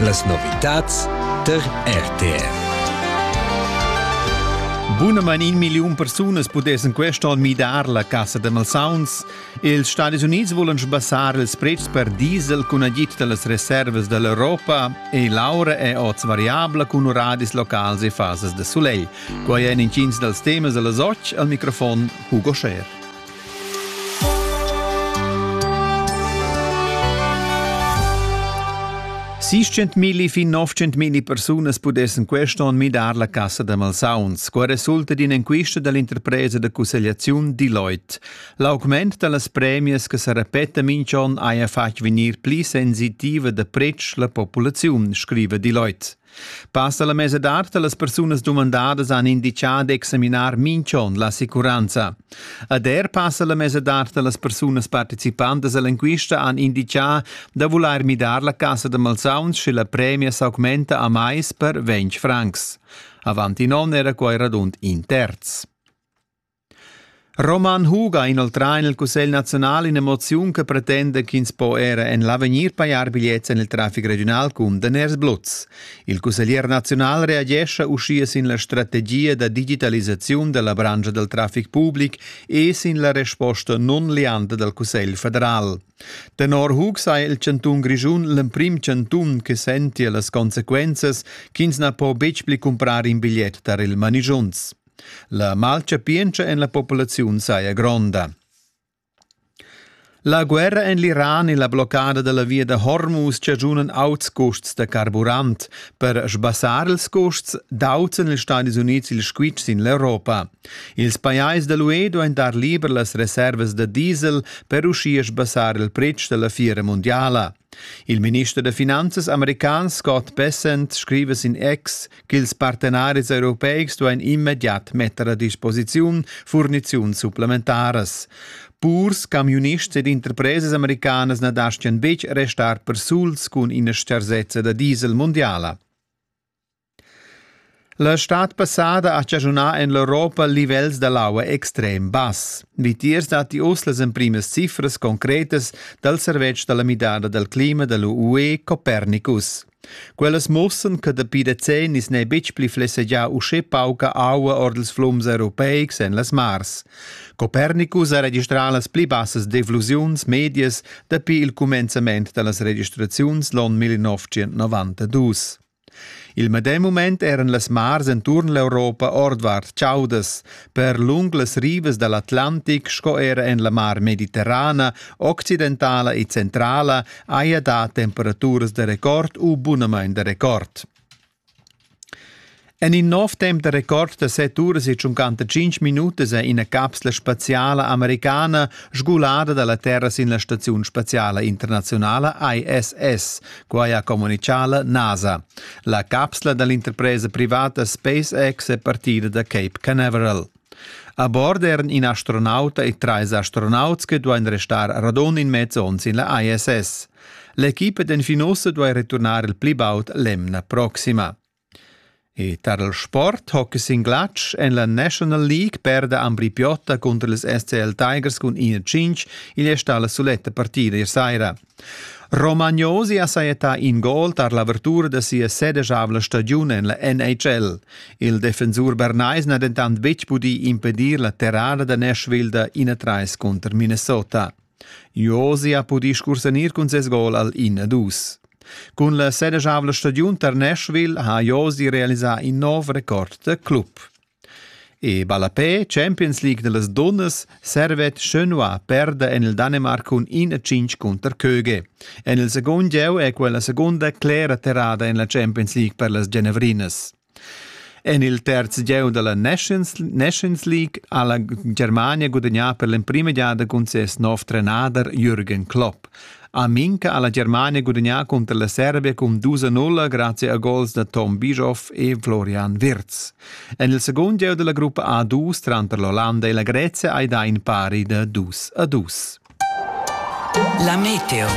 Las novitads tar RTR. Bunamain in milliun persunas pudessan quest onn midar la cassa da malsauns. Els Stadis Unids volan sbassar ils pretschs per diesel cun agid da las reservas da l'Europa e l'aura è oz variabla cun uradis locals e fasas da sulegl. Quai èn intgins dals temas da la soc al microfon Hugo Scher. 600.000 fin 900.000 persunas pudessen quest onn midar la cassa da malsauns, qua resulta d'in'enquista dall'interpresa da cussegliaziun Deloitte. L'augment dallas premias che sa repeta minch'on haja fatg vegnir pli sensitiva da pretsch la populaziun, scriva Deloitte. Pass alla mesadad dallas persunas dumandadas han indicà d'examinar minch'on l'assicuranza. Ad er passa la mesadad dallas persunas participantas all'enquista han indicà da vulair midar la cassa da malsauns sche la premia s'augmenta a mais per 20 francs. Avant in on era quai radund in terz. Roman Huga ha inoltrà en il Cussegl naziunal in'emoziun che pretenda ch'ins po era en l'avegnir pajar bigliets en il traffic regiunal cun daners bluts. Il cusseglier naziunal reagescha uschia sin la strategia da digitalisaziun della branca del traffic public e sin la resposta non lianta dal Cussegl federal. Tenor Hug sei il cantun Grischun l'emprim cantun che senti las consequenzas ch'ins na po betg pli cumprar in bigliet tar il manigiunz. La malchapientscha en la populaziun saja gronda. La guerra en l'Iran e la bloccada da la via da Hormuz chaschunan auts custs da carburant. Per sbassar ils custs d'autan ils Stadis Unids il squitsch sin l'Europa. Ils pajais da l'UE duain dar liber las reservas da diesel per uschia sbassar il pretsch da la fiera mundiala. Il minister da finanzas american Scott Bessent scriva sin X ch'ils partenaris europeics duain immediat metter a disposiziun furniziuns supplementaras. Purs, camiunists ed interpresas americanas na dastgian betg restar persuls cun ina stgarsezza da diesel mundiala. La stad passada ha chaschunà en l'Europa livels da l'aua extrem bass. Vitiers datti uss las emprimas cifras concretas dal servetsch da la midada dal clima da l'UE Copernicus. Quellas mussan che dapi decennis n'è betg pli flessegià uschè pauca aua ord ils flums europeics en las mars. Copernicus ha registrà las pli bassas deflusiuns medias dapi il cumenzament da las registraziuns l'onn 1992. Il medem mument eran las mars enturn l'Europa ordvart chaudas. per lung las rivas dall'Atlantic sco era en la mar mediterrana, occidentala e centrala haja dà temperaturas da record u bunamain da record. En in nov temp da record da 7 uras e 55 minutas è ina capsla spaziala americana sgulada dalla terra sin la staziun spaziala internazionala ISS, Quai ha communitgà la NASA. La capsla da l'interpresa privata SpaceX è partida da Cape Canaveral. A bord eran in astronauta e trais astronauts che duain restar radund in mez onn sin la ISS. L'equipa d'Enfinosse duai returnar il pli baud l'emna proxima. E tar il sport hockey sin glatsch en la National League perda Ambri Piotta cunter ils SCL Tigers cun 1-5 igl è stà la suletta partida ier saira. Romagnosi ha sajettà in gol tar l'avertura da sia sedegiavla stagiun en la NHL. Il defensur bernais n'ha dentant betg pudì impedir la terrada da Nashville da 1-3 cunter Minnesota. Josi ha pudì scursanir cun ses gol al in ed dus. Cun la sedeschavla stagiun tar Nashville ha Josi realisà in nov record da club. E ballapè Champions League da las dunnas servet Schönwa perda en il Danemark cun 1-5 cunter Köge. En il segund gieu è quella segunda clera terrada en la Champions League per las Genevrinas. En il terz gieu dalla Nations, Nations League ha la Germania gudagnà per l'emprima giada cun ses nov trenader Jürgen Klopp. Aminka ha la Germania gudagnà cunter la Serbia cun 2-0 grazie a gols da Tom Bischoff e Florian Wirtz. En il secund gieu della gruppa A2 tranter l'Olanda e la Grezia hai dà in pari da 2-2. La meteo.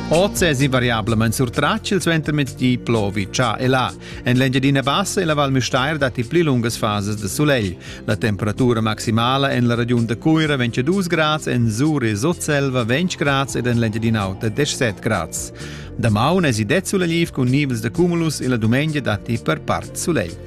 Oz è invariablament surtratg il suentermezdi plovi già e là. En l'Engiadina Bassa e la Val Müstair datti pli lungas fases de sulegl. La temperatura maximala en la regiun da Cuira vegn 2 grads, en Zuri Sutselva 20 grads ed en l'Engiadina Auta 17 grads. Damaun èsi det sulegliv cun nivels da cumulus e la dumengia datti per part sulegl.